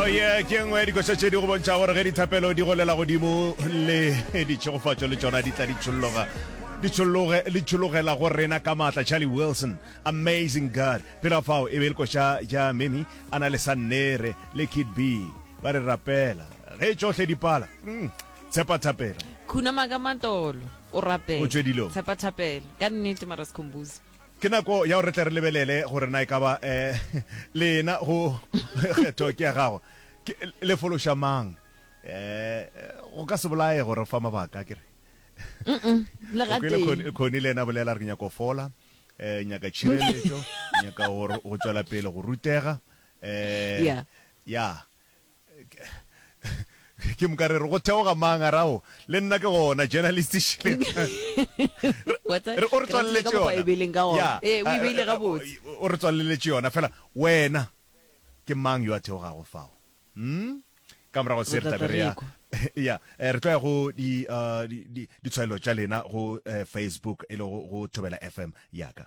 oye oh, ke nngwe ya dikoša tše di go bontšha gore ge dithapelo di golela godimo le ditšhegofatšo le tsona di tla di tšholloga di tšhologela go rena ka maatla charlie wilson amazing god pela fao e be e le koša ja memi a na le sannere le kid b ba re rapela ge tšohle di pala hmm, tshepa thapelo khunama ka matolo o rapela tshepa thapelo ka nnete mara sekhombuzi Ke nako ya gore re tle re lebelele gore na e ka ba le ena go kgetho ke ya gago ke le fološa mang. Um go ka se bolaye gore fa mabaka ke re Le ga Kwele teng. Khoni- khoni le ena bolela re ke nyaka go fola um nyaka tšhireletšo nyaka gore go tšwela pele go rutega um Yeah. ya Ke moka re re go theoga mang a rago le nna ke gona journalist Shirley. Re o re tswaleletse yona. Ya. Eh, o ibeile ga botse. O re tswaleletse yona fela wena ke mang yo a theogago fao? Hm? Ka morago se re tlabe re ya ya re tlo ya go di di ditshwaelo tša lena go Facebook e le go Thobela FM ya ka.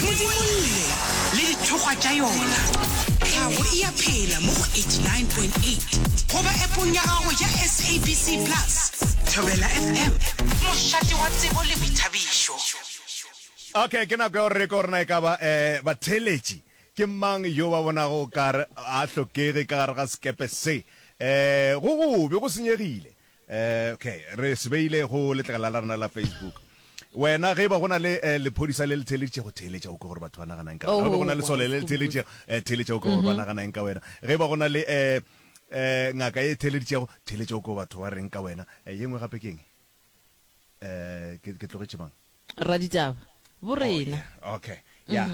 modimolle le dithokgwa tša yona tlhago e a phela mo go 89.8 goba epong ya gago ya sabc plus thobela fm mošate wa tsebo le boithabišo okay ke nako ya gore re ko rena e ka ba um batheeletši ke mang yo ba bonago o kare a hlokege ka gare ga sekepe se um go gobe go senyegile Ok, re se beile go letlakala la rena la Facebook. Wena ge e ba go na le eh, lephodisa le le theeleditšego, theeletša o ke gore batho ba nagana eng ka wena. Ge e ba go na le sole le le theeleditšego, eh, theeletša o ke gore ba nagana eng ka wena. Ge e ba go na le eh, eh, ngaka e theeleditšego, theeletša o ke gore batho ba reng ka wena. Eh, ye nngwe gape ke eng? Eh, ke, ke tlogetše mang? Raditaba. Bo rena. Ok, ya.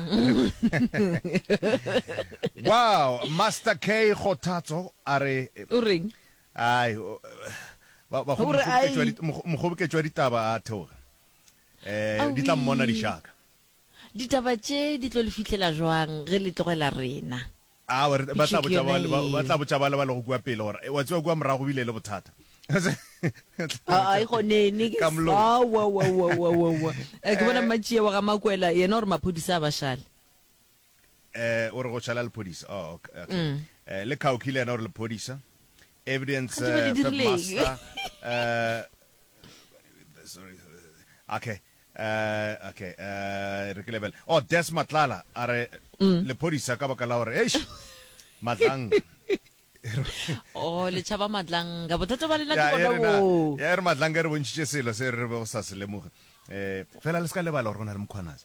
Wow, Master K Kgothatso a re, O reng? Ai, o, ba, bakgom, Gore a mokgoboketšo wa, e. dit, mokgo, mokgoboketšo wa ditaba a theoge. Eh, di tla mmona Awii. dišaka. Ditaba tše di tlo le fihlela jwang ge le tlogela rena? Aowa, re, ba tla Phišo ke botša ba, yona le ba, ba tla ye. botša bale ba lego kua pele gore, Wa tseba kua morago go bile le bothata. Ba tla botša Ai, pele, gonene ke ka s-, molomo. aowa, owa, owa, owa, owa, owa. Eh, ke bona Eh. mmatšie wa ga Makwela yena o re maphodisa a ba šale. Eh, o re go tšhala lephodisa. Oh, okay. okay. Mm. Eh, le Kauki le yena o re lephodisa. Evidence Ga di be di eh, third dirileng. master. Eh, sorry. Okay. Eh, okay. Eh, re ke lebele. Oh, Des Matlala a re Mm. lephodisa ka baka la gore eish matlang. o le tšhaba matlanga bothata ba lena ke Ya, bona e re na- boo ya e re matlanga e re bontšhitše selo se re be go sa se lemoge um fela le se ka lebala gore go na le mokgwanase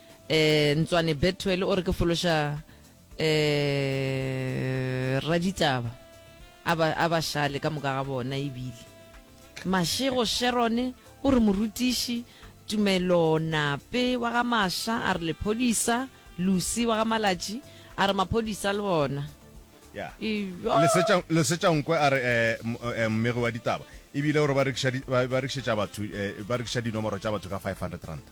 Eh Ntswane Bethuel o re ke fološa eh raditaba a ba a ba šale ka moka ga bona ebile Mashego Sherone o re morutiši Tumelo Nape wa ga Masha a re lephodisa Lucy wa ga Malatši a re maphodisa le bona Ya. Iyo. Lesetša Lesetša Nkwe a re eh, m- eh, mmegi wa ditaba ebile o re ba rekiša di- ba ba rekišetša batho eh, ba rekiša dinomoro tša batho ka 500 ranta.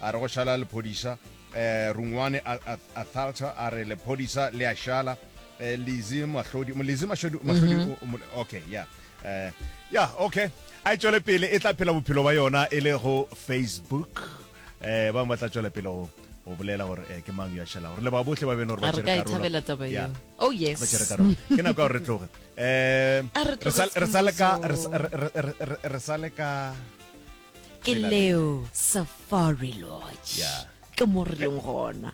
a re go šala lephodisa. Eh, Rungwane Athalta a re lephodisa le a šala. Eh, Lizi Mahlodi, Lizi Mahlodi, Mahlodi, mhm. okay, yeah. Eh, yeah, okay. A e tšwele pele, e tla phela bophelo ba yona e le go Facebook. Eh, ba ba tla tšwele pele go o bolela gore eh, ke mang yo a šhela gore le ba bohle ba beno gore ba tšere karolo thabela taba eo oh yes ba tšere karolo ke nako gore re tloge eh re sa le ka re sa le ka ke leo safari lodge yeah. ke mo re leng gona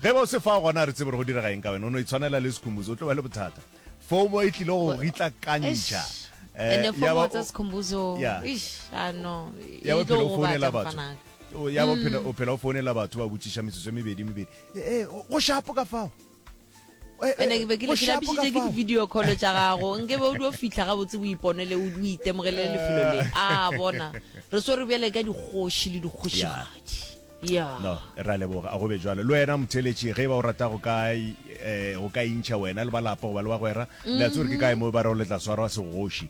ge ba o se fa gona re tsebe re go direga eng ka wena o no itshwanela le sekhumbuzo o tlo ba le bothata fomo e tlile go ritla kantšha eh, ya bophelo o founela batho ya bophelo mm. o phela o founela batho ba botšiša metsotso e mebedi mebedi ee go shapo ka fao ene be ke lapisitse ke video call tša gago nke be o dio fitlha ga botse o iponele o itemogele le lefelo le a bona re so re bjale ka dikgoši le dikgošigadi ya no ra leboga a go be jalo le wena motheletši ge ba o rata go ka eh, go ka intšha wena le balapa goba le bagwera le a tsore ke kae mo ba re o letla swarwa segoši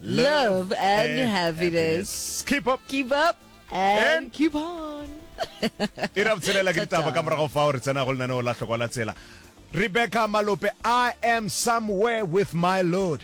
Love and happiness. Keep up. Keep up and, and keep on. e ra botshelela ke ditaba ka morago fa o re tsena go lenaneo la tlhokwa la tsela rebecca malope i am somewhere with my lord